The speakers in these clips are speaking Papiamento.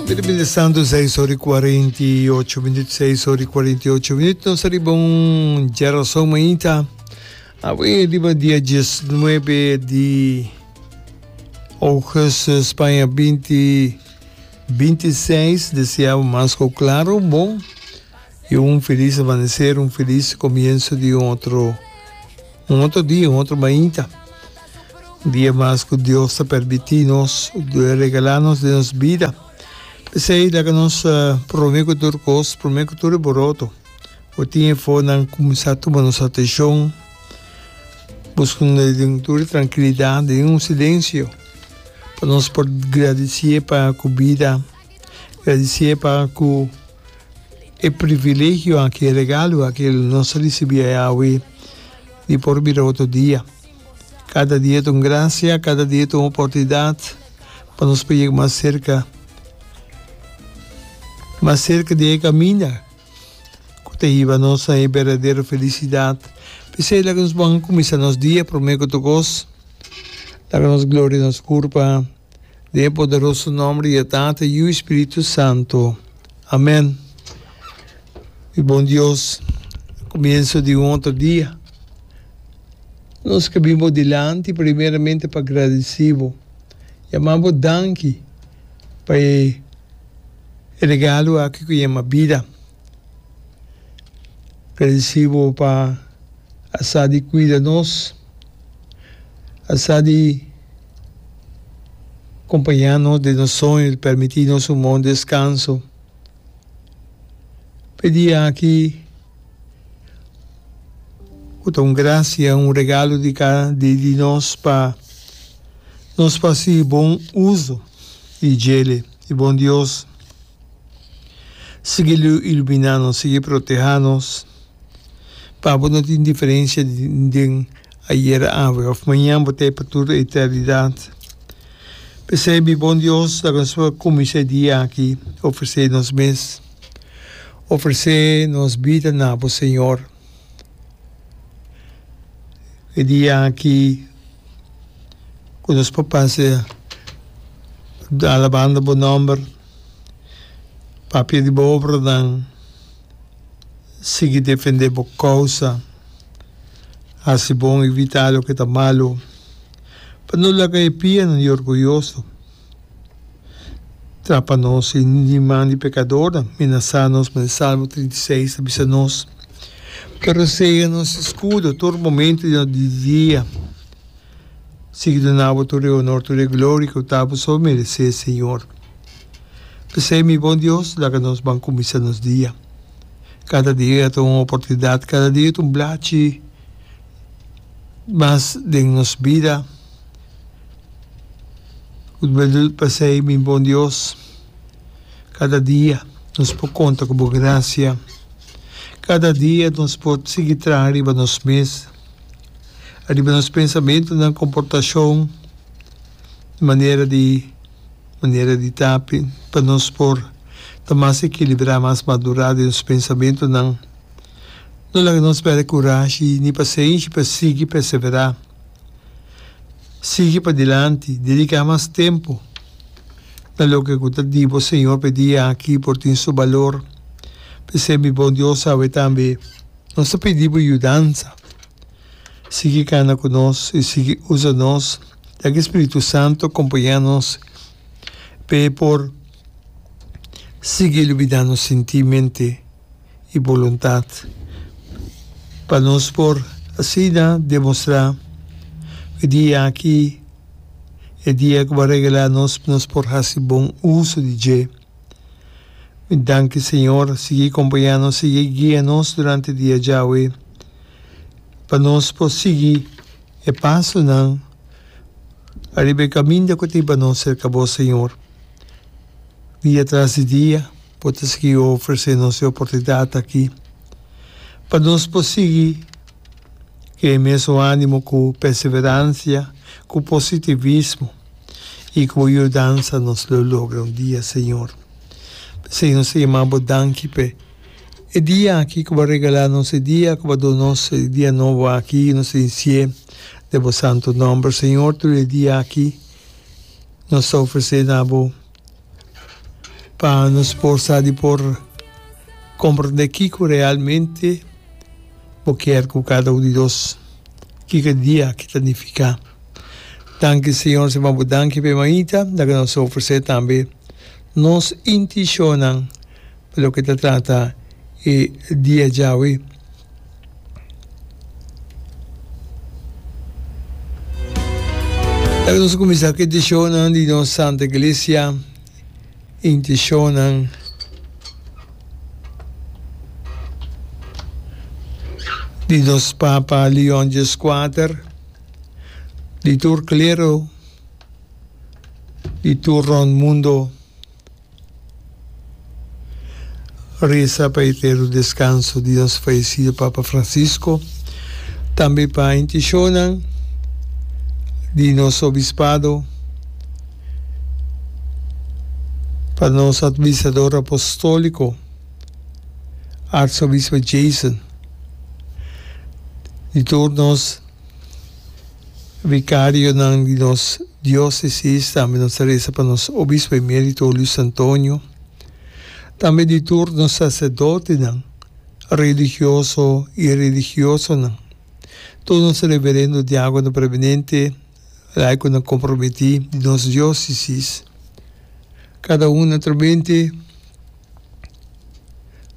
Bida bin di Santu, seis ora i kuarenta i ocho minüt, seis ora i kuarenta i ocho minüt. Nos ta riba un djarason mainta awe riba dia dies nuebe di ougùstus, Spaña, binti binti seis. Deseá bo mas ku klaru, bon I un felis amaneser, un felis komienso di un otro, un otro dia, un otro mainta. Un dia mas ku Dios ta permití nos, a regalá nos den nos bida. P'esei laga nos promé ku tur kos, promé ku tur e boroto, por tin efonan kuminsá tuma nos atenshon, buskando den tur e trankilidat, den un silensio, pa nos por gradisié pa ku bida. E di siñe pa nan ku e privilegio aki, e regalo aki el nos a risibí e awe i por bira otro dia. Kada dia ta un grasia, kada dia ta un oportunidat pa nos por yega mas serka, mas serka di e kaminda ku ta hiba nos na e berdadero felisidat. P'esei laga nos bon kuminsá nos dia, promé ku tokos laga nos gloria nos Guru pa. Den e poderoso nomber di e Tata, Yu i Spiritu Santo. Amen. Mi bon Dios, comienso di un otro dia, nos ke bin bo dilanti primeramente pa gradeci bo, yama bo danki pa e regalo aki cu yama bida. Gradeci bo pa a sa di cuida nos, a sa di. Compaña nos den nos soño i permití nos un bon descanso. P'e dia aki cu ta un gracia, un regalo di di nos pa nos faci bon uso di djele di bon Dios. Sigui ilumina nos, sigui proteha nos, p'abo no tin diferencia den Ayer, awe of mañan bo ta e pa tur eternidat. P'esei mi bon Dios laga nos por kuminsá e dia aki ofresé nos mes. Ofresé nos bida na bo, Señor. E dia aki ku nos por pasa alabando bo nòmber, papia di bo obranan. sigui defendé bo kousa, hasi bon i vita loke ta malu, pa no laga e pianan di orguyoso trapa nos i di man di pekadornan minasá nos. Mane Salmo trinta i seis ta bisa nos, Pa rosea nos skudo tur momentu di di dia, sigui duna bo tur e honor, tur e gloria ku ta bo so meresé, Señor. P'esei, mi bon Dios, laga nos ban kuminsá nos dia. Kada dia ta un oportunidat, kada dia ta un blachi mas den nos bida. P'esei, mi bon Dios, kada dia nos por konta ku bo grasia. Kada dia nos por sigui traha riba nos mes, riba nos pensamentunan, komportashon, manera di. Manera di tapi, pa nos por ta mas ekilibrá, mas madurá den nos pensamentunan, no laga nos pèrdè kurashi ni pasenshi pa sigui perseverá, sigui padilanti, dediká mas tempu na loke ku ta di bo. Señor, pa e dia aki por tin su balor. P'esei, mi bon Dios, awe tambe nos ta pidi bo yudansa. sigui kana ku nos i sigui usa nos, ya ki Spiritu Santu kompañá nos p'e por sigui lubidá nos sintí, mente i boluntat, pa nos por asina demostrá ku e dia aki e dia ku bo a regalá nos, nos por hasi bon uso di dje. Mi danki Señor, sigui compañanos, sigui guia nos durante dia djawe pa nos por sigui e pasonan ariba e caminda cu tin pa nos cerca Bo Señor. Dia tras di dia Bo ta sigui ofrece nos e oportunidad aki pa nos por sigui cu e mesun animo, cu perseverancia, cu positivismo. i ku bo yudansa nos lo logra un dia, Señor. P'esei nos ta yamá bo danki p'e e dia aki ku bo a regalá nos, e dia ku bo a duna nos e dia nobo aki, nos ta disi sié den bo santu nòmber, Señor. Tur e dia aki nos ta ofresé na bo. Pa nos por sa di por komprendé kiko realmente bo kier ku kada un di nos. Kiko dia aki ta nifiká. Danki Señor si bo a bo danki pa e mainta, laga nos a ofresé tambe nos intishonnan pa loke ta trata e dia djawe. Laga nos kuminsá ku e intishonnan di nos Santa Iglesia, intishonnan. di nos Papa Leon X4, di tur klero, di tur rond mundo. Reza pa eterno descanso di nos fallecido Papa Francisco, tambe pa intencionnan di nos Obispado, pa nos Admisador Apostolico, Arzobispo Jason, di tur nos. Vicarionan di nos diocesis, tambe nos ta reza pa nos Obispo Emerito Luis Antonio, tambe di tur nos sacerdotenan religioso y religiosonan, tur nos reverendo diacono preeminente, laiconan comprometi di nos diocesis, cada un naturalmente.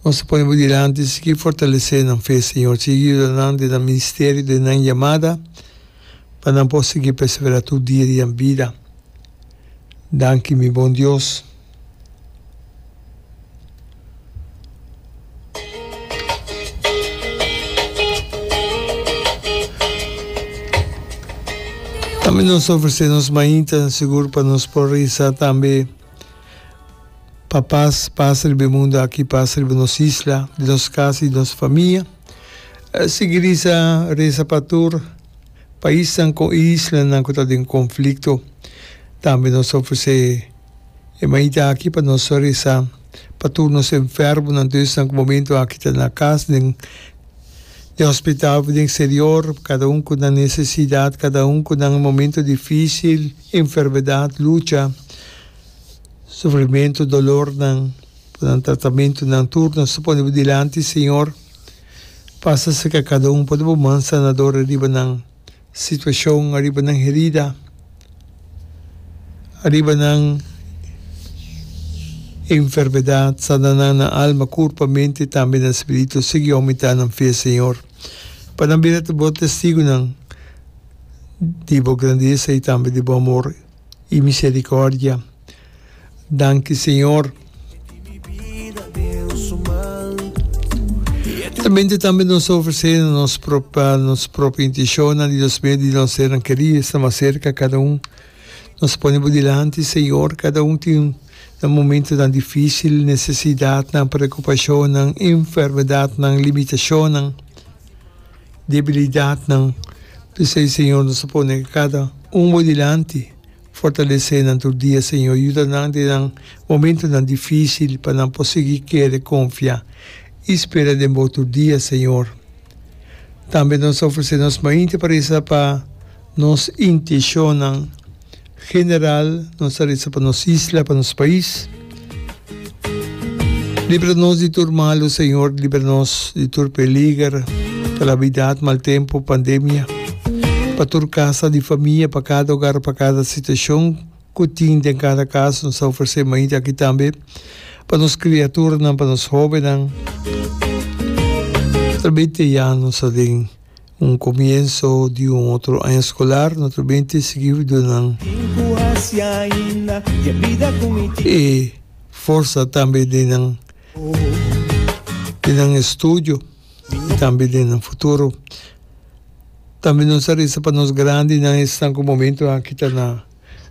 Nos ta pone bo dilanti, sigui fortalesé nan fe, Señor. Sigui yuda nan den nan ministerio, den nan yamada, pa nan por sigui perseverá tur dia di nan bida. Danki, mi bon Dios. Tambe nos ta ofresé nos mainta, sigur pa nos por regresá tambe. Pa pas pasa riba e mundu aki, pasa riba nos isla, di nos kas i nos famia. Sigui risa, resa pa tur paisnan ku islanan ku ta den konflikto. Tambe nos ta ofresé e mañita aki pa nos resa pa tur nos enfermonan, tur esnan ku momentu aki ta na kas, den e hospital, den eksterior, kada un ku na nesesidat, kada un ku na momentu difisil. enfermedad, lucha, sufrimentu, dolornan, pa nan tratamentunan tur nos ta pone bo dilanti Señor, pasa cerca cada un, pone bo man sanador ariba nan situacion, ariba nan herida, ariba nan enfermedad, sana nan na alma, curpa, mente, tambe na spiritu, sigui aumenta nan fe Señor, pa nan bira ta bo testigonan, di bo grandesa i tambe di bo amor i misericordia. Danki Señor. Mente tambe nos ta ofrece nos nos propio intencionnan Dios mio di nos hernan keri esta mas cerca cada un nos pone bo dilanti Señor cada un tin nan momentonan dificil necesidadnan preocupacionnan enfermedadnan limitacionnan. debilidadnan. P'esei, Señor, nos ta pone kada un Bo dilanti. Fortalesé nan tur dia, Señor. Yuda nan den nan momentunan difísil pa nan por sigui kere konfia i spera den Bo tur dia, Señor. Tambe nos ta ofresé nos mainti paresa pa nos inteshonnan. general nos ta resa pa nos isla, pa nos pais. Libra nos di tur malu Señor, libra nos di tur peliger, calamidad, mal tempo, pandemia, pa tur casa di famia, pa cada hogar, pa cada situacion cu tin den cada casa. Nos ta ofrece mainta aki tambe pa nos criaturanan, pa nos hobennan. Tal bes te ya nos aden. Un comienso di un otro aña escolar no ta bien te seguidonan. E forza tambe den nan den nan estudio y tambe den nan futuro. Tambe nos a reza pa nos grandinan esnan cu momento aki ta na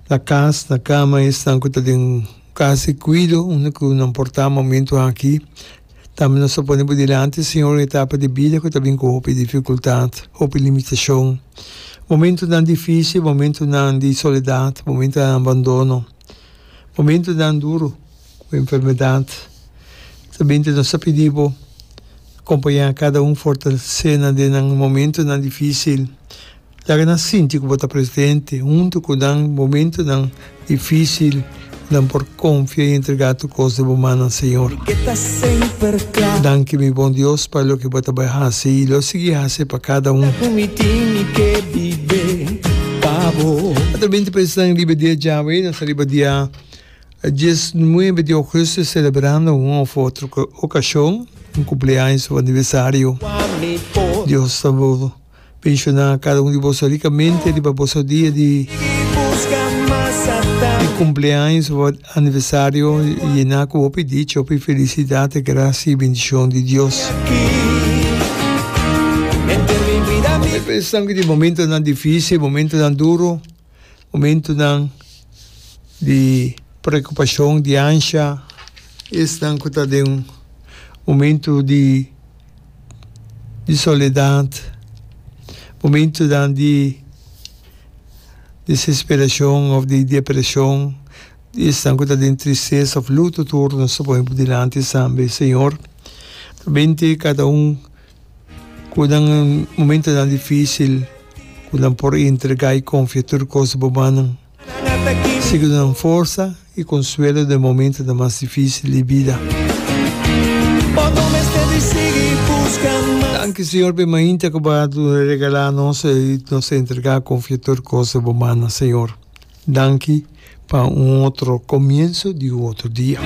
na cas na cama esnan cu ta den cas di cuido unda cu nan por ta momento aki. Tambe nos ta pone bo dilanti, Señor, un etapa di bida cu ta bin cu hopi dificultad, hopi limitacion, momentonan dificil, momentonan di soledad, momentonan di abandono, momentonan duro cu enfermedad. También nos ta pidi bo acompaña cada un, fortalece nan den nan momentonan dificil. Laga nan sinti ku bo ta presidente huntu ku nan. Momentunan difisil nan por konfia i entregá tur kos den bo mannan, Señor. Danki, mi bon Dios, pa loke bo ta bai hasi i lo sigui hasi pa kada un. Atrabente pa esnan riba dia djawe, nos ta riba dia dies nuebe di ogusto selebrando un òf otro okashon, un kumpleaños òf aniversario. Dios ta bo. Penshoná kada un di boso rikamente riba boso dia di kumpleaños òf aniversario, yená ku hopi dicha, hopi felisidat i grasia i bendishon di Dios. Tal bes esnan ku tin momentonan difísil, momentonan duru, Momentunan di preokupashon, di ansha, esnan ku ta den un momentu di soledat, momentunan di desesperashon òf di depreshon, di esnan ku ta den tristesa òf lutu tur, nos ta pone dilanti esnan be, Señor. Ta bendí kada un. Ku nan momentonan difísil ku nan por entrega i konfia tur kos bo mannan. Siñor ta nan forsa i konsuelo den momentonan mas difísil di bida. Danki Siñor p'e mainta ku bo a regalá nos i nos ta entrega i konfia tur kos den bo mannan Siñor. Danki pa un otro komienso di un otro dia.